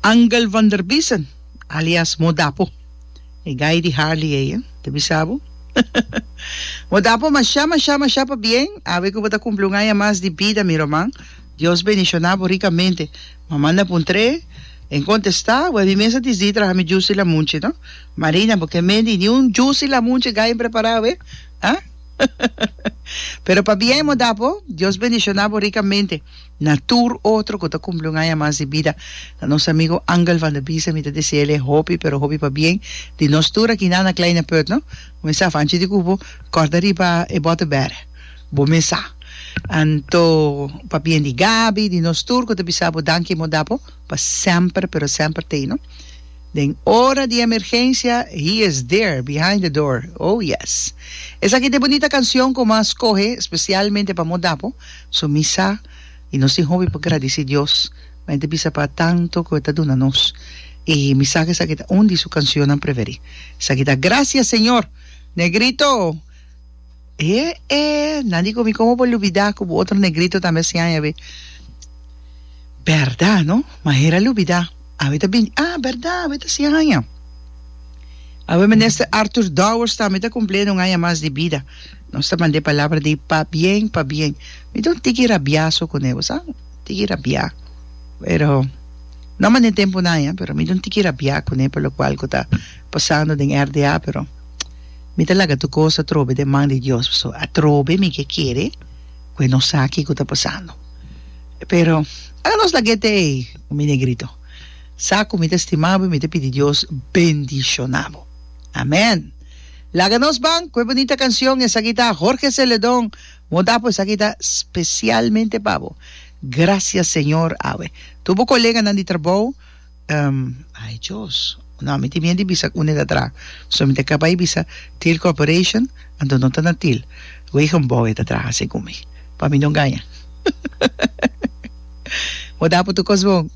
Angel van der Biesen, alias Modapo. E guy di Harley ey, eh? Ta bisa bo? Modapo, mashá, mashá, mashá pa bien. Awe cu bo ta cumpli un aña mas di bida, mi roman. Dios bendiciona bo ricamente. Bo manda pa un tre, en contesta, bo mi mester disdi traha mi jusi lamunchi, no? Marina, bo ke mendi ni un jusi lamunchi guy prepara awe, ah? Pero pa bien, Modapo. Dios bendiciona bo ricamente. Na tur otro cu ta cumpli un aña mas di bida. Na nos amigo Angel van der Biesen mi ta dici el e hopi pero hopi pa bien di nos tur aki na na Kleine Put no. Cu mi sa fanchi di cubo corda riba e bote bere. Bo mes sa. Anto pa bien di Gaby, di nos tur cu ta bisa bo danki mo da bo pa semper pero semper t'ey no. Den ora di emergencia he is there behind the door oh yes. Esaki ta e bunita cancion cu mi a scoge specialmente pa mo da bo. So mi sa, i nos tin hopi pa gradici Dios, ma e ta bisa pa tanto cu e ta duna nos. I mi sa cu esaki ta un di su cancionnan preferi. Esaki ta, Gracias, Señor! Negrito! E e! Nan di cu mi como por lubida cu bo otro negrito tambe a siña awe. Berdad, no? Ma hera a lubida. Awe ta binti. Ah, berdad, awe ta siña aña. Awe Minister Arthur Dowers tambe ta cumplendo un aña mas di bida. Nos ta mand'e palabra di pabien, pabien. Mi ta un tiki rabiaso kuné, bo sa? Un tiki rabiá. Pero, no manda den tempunan ai, pero mi ta un tiki rabiá kuné pa lokual ku ta pasando den RDA, pero mi ta laga tur kos atrobe den man di Dios, pasobra atrobe mi ke kere ku e no sa kiko ta pasando. Pero, ora nos lag'e te ei, mi negrito, sa ku mi ta stimabo i mi ta pidi Dios bendishonábo. Amèn! Laga nos ban ku e bunita kansion esaki ta Jorge Celedon Moda pues aki ta spesialmente pa bo Gracias Señor awe tur bo koleganan di trabou um ay Dios no mi tin miedo di bisa kune ta tra so mi ta kaba di bisa Thiel Corporation anto no ta na Thiel wegen bou e ta traha segun mi pa mi no gaña Moda por tur kos bon.